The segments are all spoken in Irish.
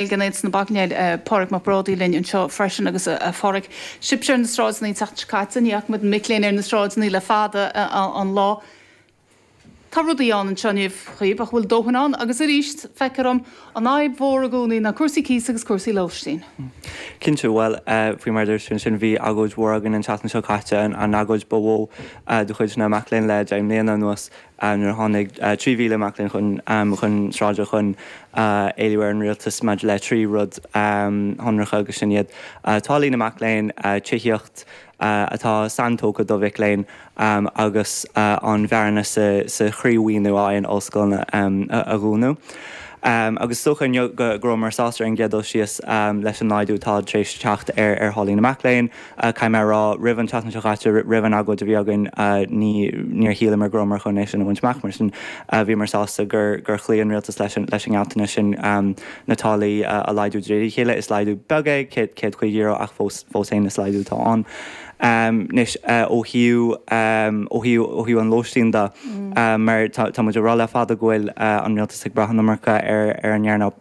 Aontas na Mac Léinn, Pádraig Mac Brádaigh linn anseo freisin agus a Phádraig, sibhse ar na sráideanna an tseachtain seo caite, ní fhaca muid na mic léinn ar na sráideanna le fada an lá. Tá rudaí ann anseo inniu daoibh, ach an bhfuil dóthain ann agus arís feictear dom, an fhadhb mhór i gcónaí ná cúrsaí cíosa agus cúrsaí lóistín. Cinnte, bhuel, faoi mar a dúirt tú ansin, bhí agóid mhór againn an tseachtain seo caite, an agóid ba mhó de chuid na mac léinn le deich mbliana anuas. nuair a tháinig 3,000 mac léinn chun chun sráide chun éiliú ar an rialtas maidir le trí rud shonracha agus sin iad, táillí na mac léinn, tithíocht atá saintógtha do mhic léinn agus an bhearna sa sa chroímhaoiniú a fhaigheann ollscoileanna a dhúnadh. Agus is dócha inniu go go rabhamar sásta ar an gcéad dul síos leis an laghdú atá tar éis teacht ar tháillí na mac léinn. caithfidh mé a rá, roimh an tseachtain seo chaite, roimh an agóid a bhí againn, ní, níor shíleamar go rabhamar chun é sin a bhaint amach, mar sin bhíomar sásta gur, gur chloígh an rialtas leis an, leis an ngealltanas sin na táillí a laghdú de réir a chéile. Is laghdú beag é, céad, céad caoga euro, ach fós, fós féin is laghdú atá ann. Anois, ó thaobh, ó thaobh, ó thaobh an lóistín de, mar tá, tá muid ag rá le fada go bhfuil an rialtas ag brath an iomarca ar, ar an earnáil.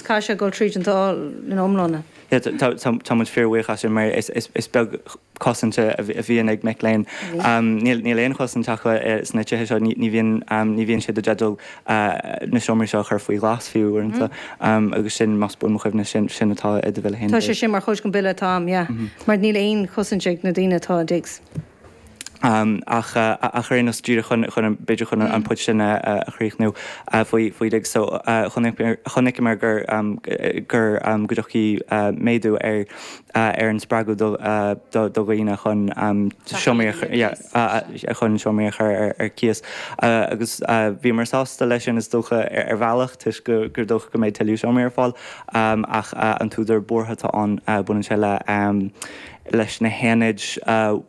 Caithfidh sé dul tríd an Dáil ina iomláine. Tá muid fíorbhuíoch as sin mar is beag cosaint a bhíonn ag mic léinn. Níl aon chosaint acu sna tithe seo, ní bhíonn siad i dteideal na seomraí seo a chur faoi ghlas fiú uaireanta agus sin, más buan mo chuimhne, sin atá i do Bhille féin. Tá sé sin mar chuid den Bhille atá a'm, yeah. Mar níl aon chosaint ag na daoine atá i digs. ach ar aon nós, díreach chun, b'fhéidir chun an point sin a chríochnú faoi digs. So chonaiceamar gur, gur go dtiocfaidh méadú ar ar an spreagadh do, do dhaoine chun seomraí a chur, yeah, chun seomraí a chur ar cíos. Agus bhíomar sásta leis sin is dócha ar bhealach toisc go, gur dócha go mbeidh tuilleadh seomraí ar fáil. Ach an t-údar buartha atá ann, baineann sé le, leis na haonaid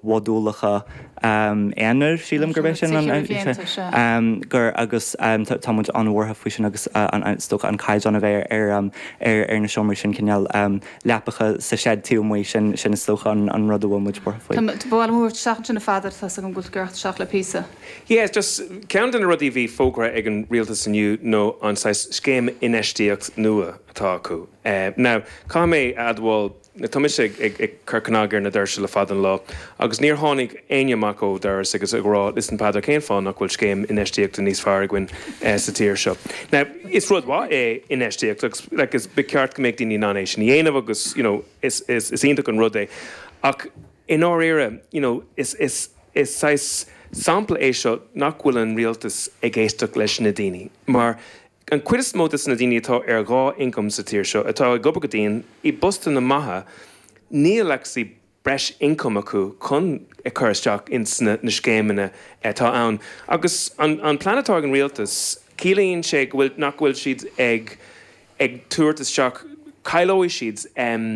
mhodúlacha aonair, sílim gurb é sin an, gur agus tá muid an-bhuartha faoi sin agus is dócha an caighdeán a bheidh ar na seomraí sin, cineál leapacha sa seid taobh amuigh, sin is dócha an rud a bhfuil muid buartha faoi. Bhuel, mhair tú seachtain ansin a Pheadair, tá's agam go bhfuil tú ag iarraidh teacht le píosa. Yes, just ceann de na rudaí a bhí fógartha ag an rialtas inniu nó an saghas scéim infheistíocht nua atá acu. Now, caithfidh mé a admháil, Tá mise ag cur cnag ar na doirse le fada an lá agus níor tháinig éinne amach ó dhoras agus ag rá, Listen Peadar, cén fáth nach bhfuil scéim infheistíochta níos fearr againn sa tír seo? Now, is rud mhaith é infheistíocht agus like is ba cheart go mbeadh daoine in ann é sin a dhéanamh agus you know is is iontach an rud é ach i ndáiríre you know is is is saghas sampla é seo nach bhfuil an rialtas ag éisteacht leis na daoine mar An chuid is mó de na daoine atá ar dhá income sa tír seo, atá ag obair go dian i bpostanna maithe, níl actually breis income acu chun a chur isteach ins na scéimeanna atá ann. Agus an plean atá ag an Rialtas, ciallaíonn sé go bhfuil, nach bhfuil siad ag ag tabhairt isteach, cailleoidh siad em.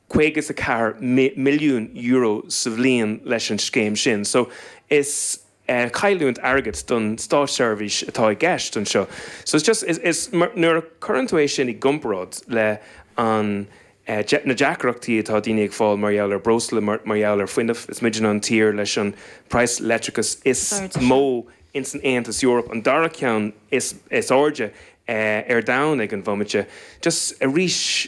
€54 milliún sa bhliain leis an scéim sin so is cailliúint airgid don státseirbhís atá i gceist anseo so is just is nuair a cuireann tú é sin i gcomparáid le an na deacrachtaí atá daoine ag fáil mar gheall ar breosla mar mar gheall ar fuinneamh is muidne an tír leis an price leictreachais is mó ins an Aontas Eoraip an dara ceann is is airde ar domhan ag an bhomaite just arís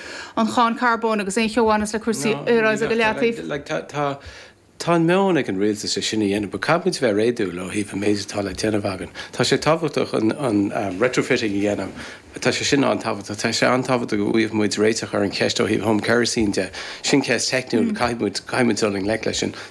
an cháin carbóin agus aon cheo a bhaineas le cúrsaí aeráide go leataobh. Tá an meon ag an rialtas é sin a dhéanamh but caithfidh muid bheith réadúil ó thaobh an méid atá le déanamh againn. Tá sé tábhachtach an retrofitting a dhéanamh, tá sé sin an-tábhachtach. Tá sé an-tábhachtach go bhfaigheadh muid réiteach ar an cheist ó thaobh home kerosene de. Sin ceist theicniúil, caithfidh muid dul i ngleic leis sin.